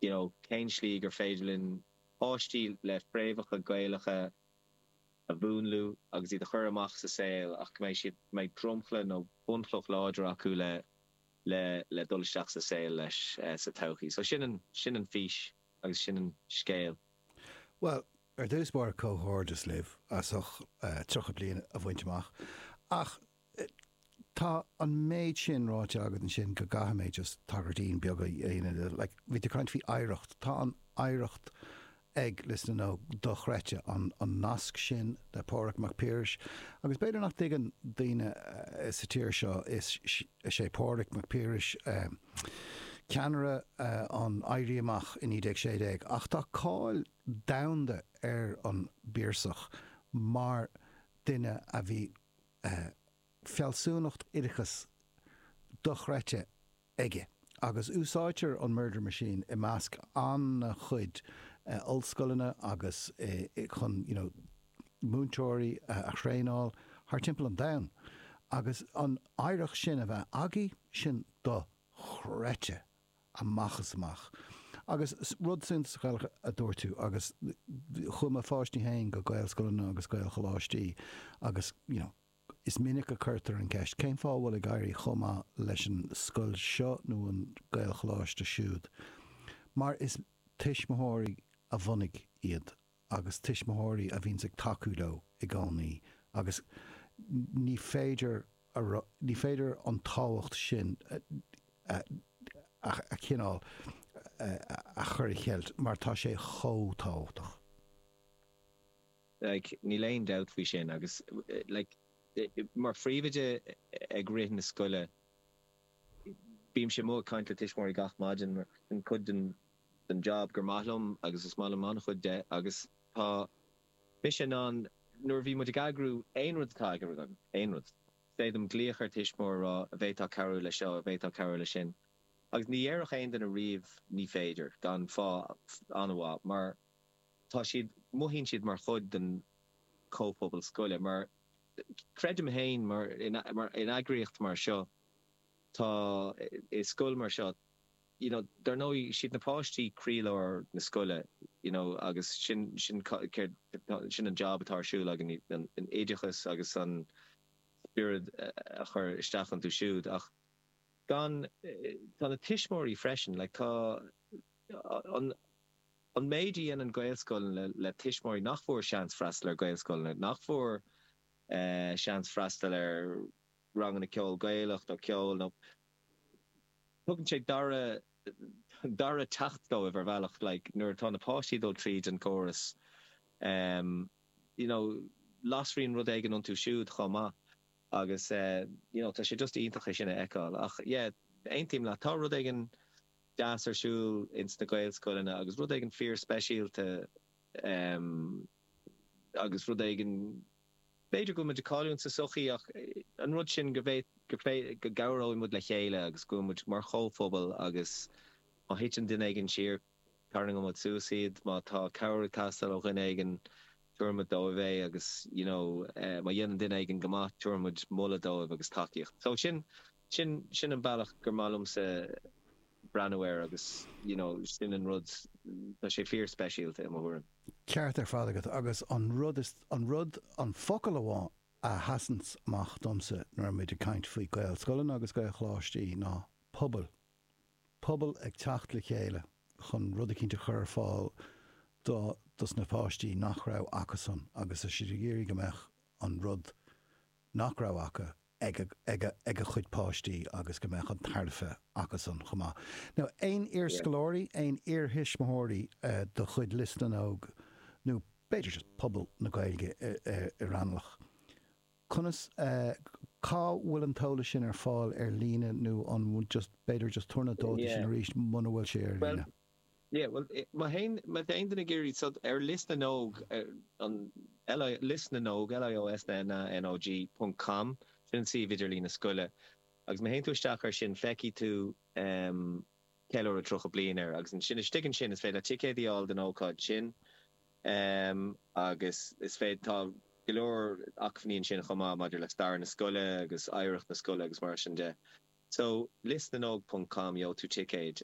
you know cén slí gur féidir linn páistí le fréamhacha Gaelacha a mhúnlú agus iad a chur amach sa saol ach go mbeidh siad, go mbeidh dromchla nó bunchloch láidir acu le, le, le dul isteach sa saol leis sa todhchaí. So sin an, sin an fís agus sin an scéal. Bhuel, ar dtús báire comhghairdeas libh as ucht 30 bliain a bhaint amach ach Tá an méid sin ráite agat ansin go gcaithfidh mé just tagairtín beag a dhéanamh dó. Like, bhí tú ag caint faoi oidhreacht. Tá an oidhreacht ag Lios na nÓg dochreidte, an nasc sin le Pádraig Mac Piarais. Agus b'fhéidir nach dtuigeann daoine sa tír seo, is é Pádraig Mac Piarais ceannaire an Éirí Amach i 1916 ach tá cáil domhanda ar an bPiarsach mar duine a bhí, fealsúnacht oideachais dochreidte aige agus úsáidtear an Murder Machine i measc an-chuid ollscoileanna agus chun you know múinteoirí a thraenáil thart timpeall an domhain agus an oidhreacht sin a bheith agaibh, sin dochreidte. amach is amach. Agus rud suntasach eile a dúirt tú agus chuaigh mo pháistí féin go Gaelscoileanna agus Gaelcholáistí agus you know is minic a chuirtear an ceist cén fáth a bhfuil ag éirí chomh maith leis an scoil seo nó an nGaelcholáiste siúd mar is tuismitheoirí a bhunaigh iad agus tuismitheoirí a bhíonns ag tacú leo i gcónaí agus ní féidir ní féidir an tábhacht sin a chineál a chur i gceilt mar tá sé chomh tábhachtach. Like níl aon dabht faoi sin agus like mar phríomhoide ag rith na scoile bímse amuigh ag caint le tuismitheoirí gach maidin mar sin cuid den den jab gur maith liom agus is maith liom an-chuid de agus tá mise in ann nuair a bhíonn muid ag eagrú aon rud atá ag rith, aon rud, féidir liom glaoch ar tuismitheoir a rá an bhféadfá cabhrú le seo, an bhféadfá cabhrú le sin agus ní déarfadh aon duine riamh ní féidir gan fáth an-mhaith mar tá siad, mothaíonn siad mar chuid den chomhphobal scoile mar creidim féin mar in eagraíocht mar seo tá, i scoil mar seo, you know dar ndóigh is iad na páistí croílár na scoile you know agus sin sin é sin an jab atá ar siúl againn an oideachas agus an spiorad a chur isteach iontu siúd ach gan tá na tuismitheoirí freisin like tá an an méid a dhéanann Gaelscoileanna le tuismitheoirí nach bhfuair seans freastal ar Gaelscoileanna nach bhfuair seans freastal ar ranganna ceoil Gaelach nó ceoil ó tugann sé dara dara seans dóibh ar bhealach like nuair atá na páistí ag dul tríd an gcóras em you know lasann rud éigin iontu siúd chomh maith agus eh you know tá sé just iontach é sin a fheiceáil ach yeah aontaím leat tá rud éigin deas ar siúl ins na Gaelscoileanna agus rud éigin fíor speisialta em agus rud éigin B'fhéidir go bhfuil muid ag cailliúint sa sochaí ach an rud sin go go gcabhróidh muid le chéile agus go bhfuil muid mar chomhphobal agus má thiteann duine éigin siar tarraingeoidh muid suas iad, má tá cabhair ag teastáil ó dhuine éigin tabharfaidh muid dóibh é agus you know má dhéanann duine éigin go maith tabharfaidh muid moladh dóibh agus tacaíocht. So sin Sin, sin an bealach gur maith liomsa breathnú air agus you know sin an rud, tá sé fíor speisialta i mo thuairim. Ceart ar fad agat agus an rud is, an rud, an focal amháin a sheasanns amach domsa nuair atá muid ag caint faoi Gaelscoileanna agus Gaelcholáistí ná pobal. Pobal ag teacht le chéile chun rud eicínt a chur ar fáil do, dos na páistí nach raibh acusan agus iad ag iarraidh go mbeadh an rud nach raibh acu ag a gcuid páistí agus go mbeadh an tairbhe acusan chomh maith. Now aon iarscoláirí, aon iarthuismitheoirí de chuid Lios na nÓg nó b'fhéidir just pobal na Gaeilge i Raghnallach, conas, cá bhfuil an t-eolas sin ar fáil ar líne nó an just b'fhéidir just tabhair na dátaí sin arís muna bhfuil sé ar líne. Yeah, well, ma théann ma théann duine ag iarraidh go dtí Lios na nÓg ar an Lios na nÓg LIOSNA NÓG ponc com sin an suíomh idirlín na scoile agus ma théann tú isteach ar sin feicfidh tú em ceiliúradh 30 bliain air agus ansin istigh ansin is féidir leat ticéad a fháil don ócáid sin em agus is féidir tá go leor acmhainní ansin chomh maith maidir le stair na scoile agus oidhreacht na scoile agus mar sin de so liosnanóg ponc com gheobhaidh tú ticéad